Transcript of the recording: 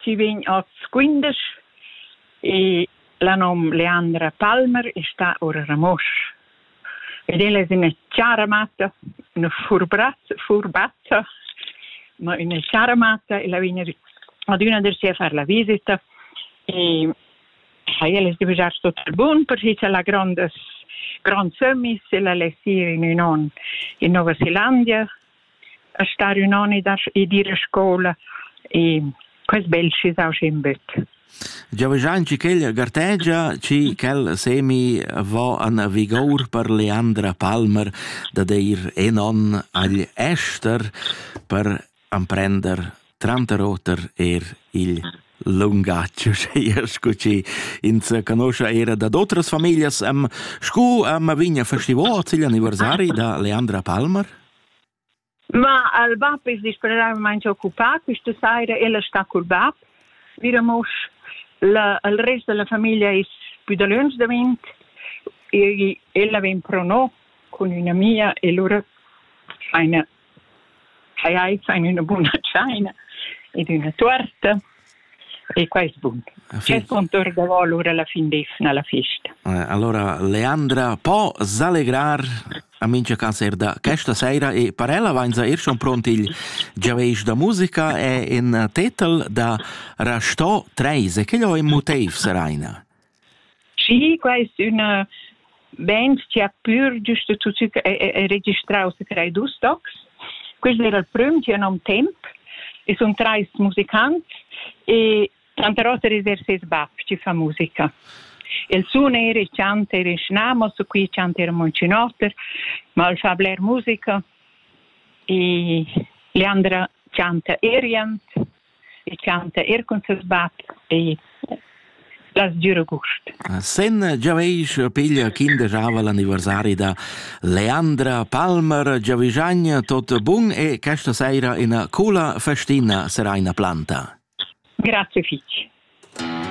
Chi vegn hoz quindesch e la nom Leandra Palmer e sta ora a Ramosch. Ed ella es üna chara matta, üna furbrazza, furbazza, ma üna chara matta, ella vegn adüna der sia a far la visita e ha ella es devisà tuot bun perche cha la grondas gronds sömmis ella less ir in ün on in Nova Zelandia a star ün on ed, a, e dir a scoula e quels belcis au in böt. Giovanni Cichel gartegia ci quel semi va an vigour per Leandra Palmer da deir en on agl ester per amprender tranteroter er il lungatg, scu ci ins canoscia era da d'otras familias am scu am vigna festivo il anniversari da Leandra Palmer? Ma il bap es discurreramaing occupà. Quista saira el es stà cul bap. Miramos la, il rest da la famiglia es pü dalöntsch davent. E ella vegn pro no cun üna amia e lura faina tschai, faina üna buna tschaina ed üna tuorta. E quest punct. Quest punct davo l'ura la fin d'efna la festa. Eh, allora Leandra po s'allegrar a mincha cancer da questa sera e per ella vainza ir schon pront il giaveisch da musica e in tetel da Rasto 3 e che ho in motiv seraina. Schi, quai es üna benzia pür giüst da tuot che è registrà ussa che hai dus tocs. Quist d'eira il prüm chi am temp e sun trais musicants e tranter oter is er ses bap chi fa musica. El sun eir e chanta eir in schnamos, qui chanta eir Moncinotter, ma el fa bler musica e Leandra chanta Erient e chanta er cun ses bab e la sdüra gust. Sen giaveisch piglia kinder giava l'anniversari da Leandra Palmer giavischagna tot bun e questa saira ina coola festina serà ina planta. Grazie fich.